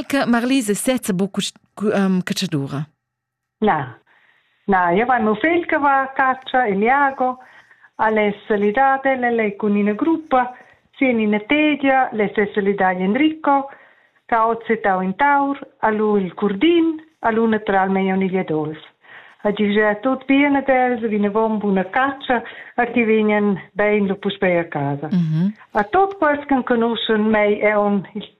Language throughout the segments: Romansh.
che Marlise sezza buca um, catschadura. Na, na, io vai mio figl che va a caccia, il Iago, alle solidate, le lei con una gruppa, sin in tedia, le se solidagli Enrico, ca ozze tau in taur, a lui il curdin, a lui natural mei oniglia dolf. A gigia tut bene dels, vine vom buna caccia, a ti vinen bein lo puspei a casa. Mm -hmm. A tot quels che conoscen mei e on il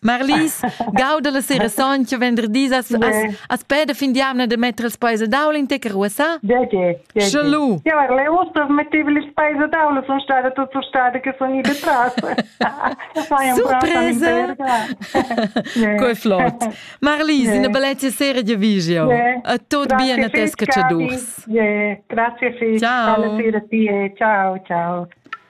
Marlies, gauda la sera soncha venderdis as as as peda fin d'jamna de metter els paes a daula in te caruossa? Perché? Sche lu. Ja, ar le usta metteva les paes a daula, son stada tutta stada che son ida tras. Surpresa! Coi flot. Marlies, in una bellezia sera di vigio. A tot bien a tes cacciadurs. Grazie, Fisch. Ciao. Alla sera, tie. Ciao, ciao.